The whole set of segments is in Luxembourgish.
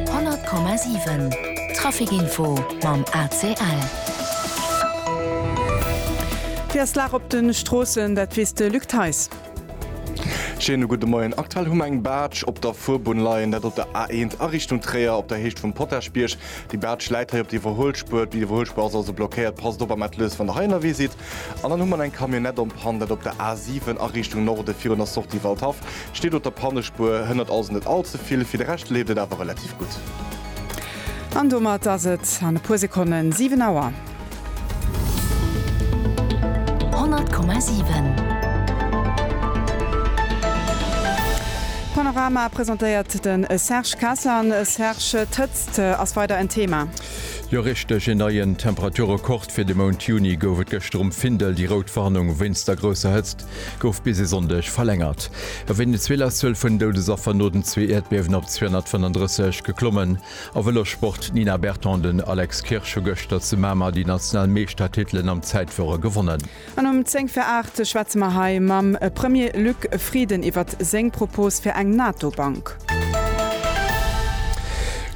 100,7 Trafic Info mam ACL. Wéi ass d'Lag op de Stroossen, dat weess de Luc Theis. Schéine gudde Moien. Aktuell hu mer eng Baatsch op der Fuerbunn leien, dat op der A1 a Richtung Tréier op der Héicht vum Potaschbierg. Déi Baatsch läit hei op der Iwwerhuelspuer. D'Iwwerhuelspuer ass also blockéiert. Passt op am Ateliers, wann der hei ënnerwee sidd. An dann hu mer eng Camionnette en panne, dat op der A7 a Richtung Norde virun der Sortie Waldhaff. Steet op der Pannespuer, hënnert also net all ze vill. Fir de Rescht leeft et awer relativ gutt. An domat ass et an e puer Sekonnen 7 Auer. 100,7. Panorama presentéiert de Serge Kasler. Serge, d'Hëtzt ass weider en Thema. Jo richteg, een neien Temperaturrekord fir de Mount Juni gouf et gëschter um Findel. Déi rout Warnung wéinst der grousser Hëtzt gouf bis e Sonndeg verlängert. A Venezuela-Zuel vun Doudesaffer no den zwee Äerdbiewen op 235 geklommen. A Vëlossport, D'Nina Berton an den Alex Kirsch hu gëschter zu Mamer déi national Meeschtertitelen am Zäitfuere gewonnen. An um 10 vir 8 schwätze mer hei mam Premier Luc Frieden iwwert seng Propos fir eng NATO-Bank.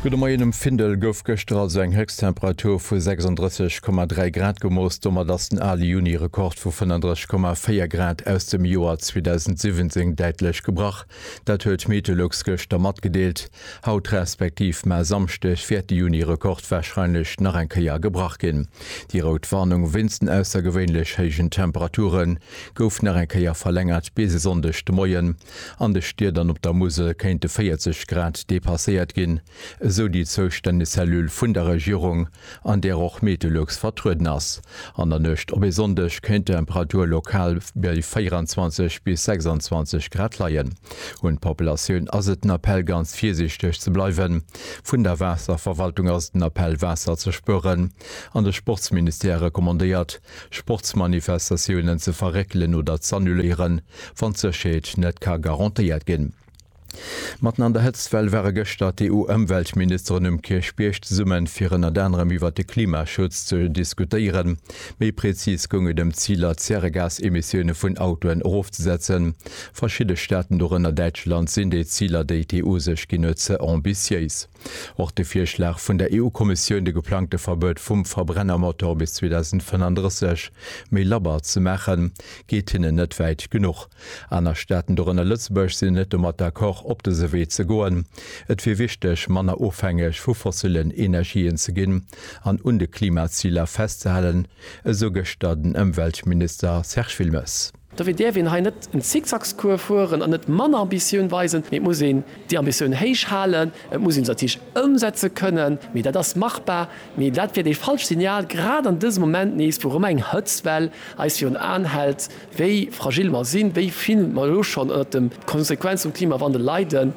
Gudde Moien. Um Findel gouf gëschter also eng Héchsttemperatur vu 36,3 Grad gemooss. Domat ass den ale Juni-Rekord vu 35,4 Grad aus dem Joer 2017 däitlech gebrach. Dat huet Meteolux gëschter matgedeelt. Haut respektiv mar Samschdeg wäert de Juni-Rekord warscheinlech nach eng Kéier gebrach ginn. Déi rout Warnung wéinst den aussergewéinlech héijen Temperature gouf nach eng Kéier verlängert bis e Sonndeg de Moien. An de Stied an op der Musel kéinte 40 Grad depasséiert ginn, esou déi zoustänneg Cellule vun der Regierung. an där och Meteolux vertrueden ass. An der Nuecht op e Sonndeg kéint d'Temperatur lokal bei 24 bis 26 Grad leien. Un d'Populatioun ass et den Appell ganz virsiichteg ze bleiwen. Vun der Waasserverwaltung ass et den Appell Waasser ze spueren an de Sportsministère recommandéiert Sportsmanifestatiounen ze verréckelen oder z'annuléieren, wann d'Sécherheet net ka garantéiert ginn. Matten an der Hëtztwell ware gëschter d'EU-Ëmweltministeren um Kierchbierg zesumme fir ënnert anerem iwwert de Klimaschutz ze diskutéieren. Méi prezis goung et ëm d'Ziler d'Zäregasemissioune vun Autoen erofzesetzen. Verschidde Staaten, dorënner Däitschland, sinn déi Ziler déi d'EU sech ginn huet ze ambitiéis. Och de Virschlag vun der EU-Kommissioun, de geplangte Verbuet vum Verbrennermotor bis 2035 méi labber ze maachen, geet hinnen net wäit genuch. Aner Staaten, dorënner Lëtzebuerg, sinn net domat d'accord, op dëse Wee ze goen. Et wier wichteg, manner ofhängeg vu fossillen Energien ze ginn an un de Klimaziler festzehalen, esou gëschter den Ëmweltminister Serge Wilmes. Dofir däerf een hei net en Zickzackscours fueren an net manner Ambitioun weisen, mee et muss een déi Ambitioun héich halen. Et muss een se natierlech ëmsetze kënnen, mee dat ass machbar. Mee dat wier dee falscht Signal, grad an dësem Moment nees, wou erëm eng Hëtztwell eis virun Aen hält, wéi fragil mer sinn, wéi vill mer elo schonn ënnert de Konsequenze vum Klimawandel leiden.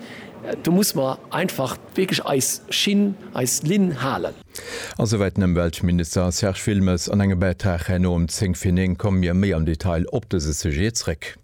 Do muss mer einfach wierklech eis Schinn, eis Linn halen. A souwäit den Ëmweltminister Serge Wilmes an engem Bäitrag herno um zéng vir néng komme mir méi am Detail op dëse Sujet zréck.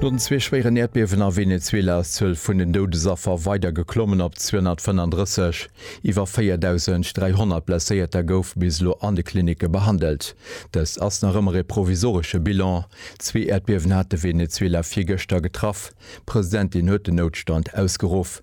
No den zwee schwéieren Äerdbiewen a Venezuela ass d'Zuel vun den Doudesaffer weider geklommen op 235. Iwwer 4.300 Blesséierter goufe bis elo an de Klinicke behandelt. Dëst ass nach ëmmer ee provisoresche Bilan. Zwee Äerdbiewen hate Venezuela virgëschter getraff. D'Presidentin huet den Noutstand ausgeruff.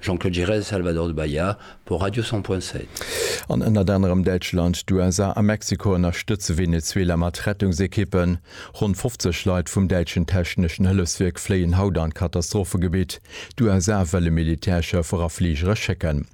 Jean-Claude Giresse, Salvador de Bahia pour Radio 100 Point 7. An ënnert anerem Däitschland, d'USA a Mexiko ënnerstëtze Venezuela mat Rettungsekippen. Ronn 50 Leit vum däitschen techneschen Hëllefswierk fléien haut an d'Katastrophegebitt. D'USA wëlle Militärschëffer a Fligere schécken.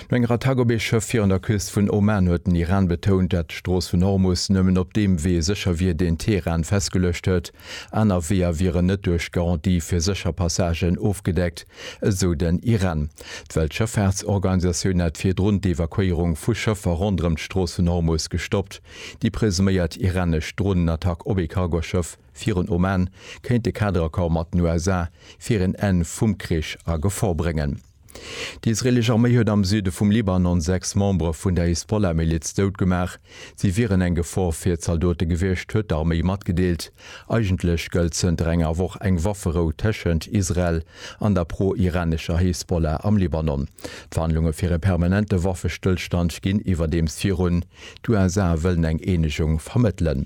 No enger Attack op ee Schëff virun der Küst vun Oman huet den Iran betount, dat d'Strooss vun Hormus nëmmen op deem Wee sécher wier, deen Teheran festgeluecht huet. Aner Weeër wieren net duerch Garantie fir sécher Passagen ofgedeckt, esou den IREN. D'Weltschëffaartsorganisatioun hat virdrun d'Evakuéierung vu Schëffer ronderëm d'Strooss vun Hormus gestoppt. Déi presuméiert iranesch Dronenattack op ee Cargoschëff virun Oman kéint de Kaderaccord mat den USA fir en Enn vum Krich a Gefor bréngen. Déi israeelesch Arméi huet am Süde vum Libanon sechs Membere vun der Hisbollah-Miliz dout gemaach. Si wieren eng Gefor fir d'Zaldote gewiescht, huet d'Arméi matgedeelt. Eigentlech gëllt zënter enger Woch eng Wafferou tëschent Israel an der pro-iranescher Hezbollah am Libanon. D'Verhandlunge fir e permanente Waffestëllstand ginn iwwerdeems virun. D'USA wëllen eng Eenegung vermëttelen.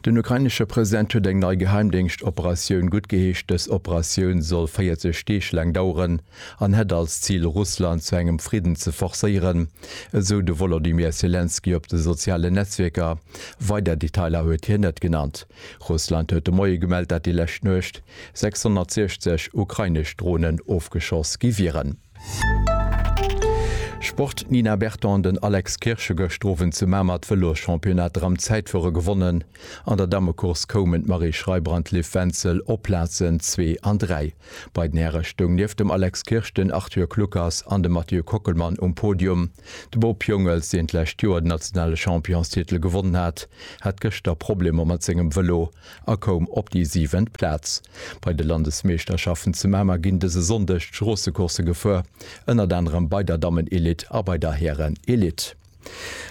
Den ukrainesche President huet eng nei Geheimdéngscht-Operatioun guttgeheescht. Dës Operatioun soll 40 Deeg laang daueren. an hätt als Zil Russland zu engem Fridden ze forcéieren, esou de Wolodymyr Selenskyj op de sozialen Netzwierker. Weider Detailer huet hien net genannt. Russland huet de Moie gemellt, dat déi lescht Nuecht 660 ukrainesch Dronen ofgeschoss gi wieren. Sport, D'Nina Berton an den Alex Kirsch hu gëscht Owend zu Mamer d'Vëlosschampionnat Ramzäitfuere gewonnen. An der Dammecourse koumen d'Marie Schreiber an d'Liv Wenzel op Plazen zwee an dräi. Bei den Häre stoung nieft dem Alex Kirsch den Arthur Kluckers an de Mathieu Kockelmann um Podium. De Bob Jungels, deen d'lescht Joer den nationale Championstitel gewonnen hat, hat gëschter Problemer mat sengem Vëlo a koum op déi siwent Plaz. Bei de Landesmeeschterschaften zu Mamer ginn dëse Sonndeg d'Stroossecoursse gefuer, ënnert anerem bei der Dammen-Elite a bei der Hären-Elite.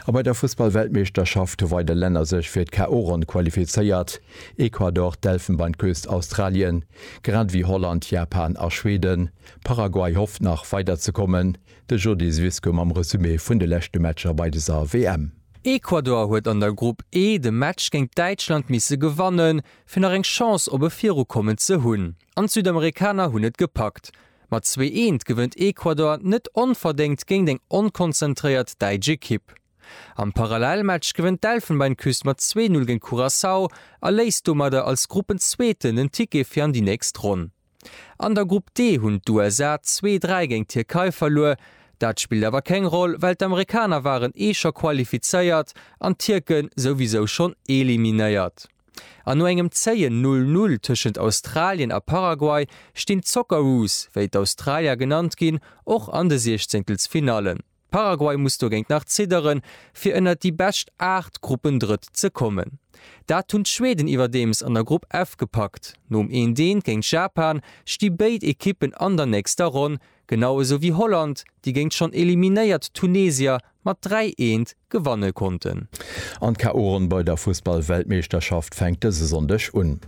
A bei der Fussballweltmeeschterschaft hu weider Länner sech fir d'KO-Ronn qualifizéiert, Ecuador, d'Elfenbeinküst, Australien, grad ewéi Holland, Japan a Schweden. Paraguay hofft nach weider ze kommen. De Jody Zwisko mam Resumé vun de leschte Matcher bei dëser WM. Ecuador huet an der Grupp E de Match géint Däitschland misse gewannen, fir nach eng Chance op e Virukommen ze hunn. An d'Südamerikaner hunn et gepackt. Mat zwee Eent gewënnt Ecuador net onverdéngt géint eng onkonzentréiert däitsch Ekipp. Am Parallelmatch gewënnt d'Elfenbeinküst mat zwee Null géint Curaçao a léisst domadder als Gruppenzweeten den Ticket fir an déi nächst Ronn. An der Grupp D hunn d'USA zwee Dräi géint d'Tierkei verluer. Dat spillt awer keng Roll, well d'Amerikaner waren ee scho qualifizéiert an d'Tierke souwisou schonn eliminéiert. An no engem zéien Null-Null tëschent Australien a Paraguay stinn d'Socceroos, wéi d'Australier genannt ginn, och an de Siechzéngtelsfinallen. Paraguay muss dogéint nach zidderen, fir ënnert déi bescht 8 Gruppendrëtt ze kommen. Dat hunn d'Schweden iwwerdeems an der Grupp F gepackt. Nom Eent-Eent géint Japan sti béid Ekippen an der nächster Ronn, genau esou wéi Holland, déi géint schonn eliminéiert Tunesier mat 3 Eent gewanne konnten. An d'KO-Ronn bei der Fussball-Weltmeeschterschaft fänkt dëse Sonndeg un.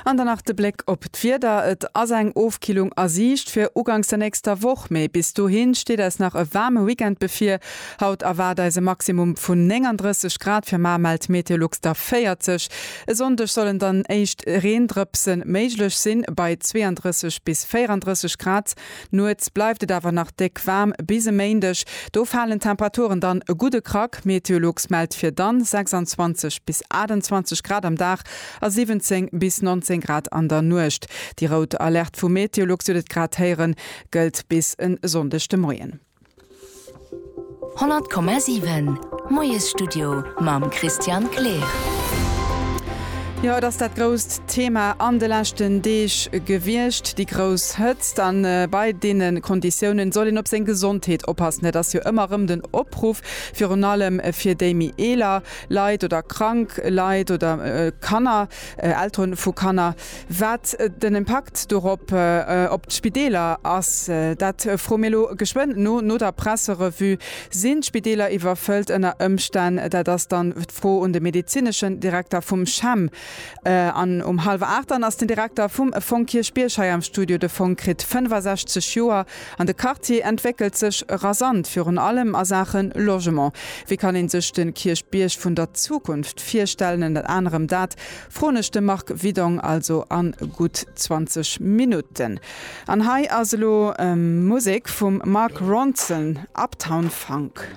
An dann nach de Bléck op d'Wieder, Et ass eng Ofkillung a Siicht fir uganks der nächster Woch, mee bis dohi steet eis nach e waarme Weekend bevir. Haut erwaart eis e Maximum vun 39 Grad, fir mar mellt Meteolux der 40. E Sonndeg sollen dann éischt Reendrëpse méiglech sinn, bei 32 bis 34 Grad. Nuets bleift et awer nach déck waarm bis e Méindeg, do falen d'Temperaturen dann e gudde Krack. Meteolux mellt fir dann 26 bis 28 Grad am Dag a 17 bis 19 Grad an der Nuecht. Déi rout Alerte vu Meteolux, Dir hutt et grad héieren, gëllt bis e Sonndeg de Moien. 100,7 Moiesstudio mam Christian Kleer. Jo, et ass dat grousst Thema an de leschten Deeg gewiescht, déi grouss Hëtzt. A bei deene Konditiounen soll een op seng Gesondheet oppassen. Dat ass jo ëmmer erëm den Opruff, virun allem fir déi méi eeler Leit oder krank Leit oder Kanner, Eltere vu Kanner. Wat den Impakt dorop op d'Spideeler ass, dat froe mir elo geschwënn no. No der Presserevue, Sinn d'Spideeler iwwerfëllt ënner Ëmstänn? Dat ass dann d'Fro un de medezineschen Direkter vum CHEM. An um hallwer 8 dann ass den Direkter vum Fong Kierchbierg hei am Studio. De Fong kritt 65 Joer an de Quartier entwéckelt sech rasant, virun allem a Saache Logement. Wéi kann ee sech de Kierchbierg vun der Zukunft virstellen? Ënnert anerem dat Froen ech de Marc Widong also an gutt 20 Minutten. An hei ass elo Musek vum Mark Ronson, Uptown Funk.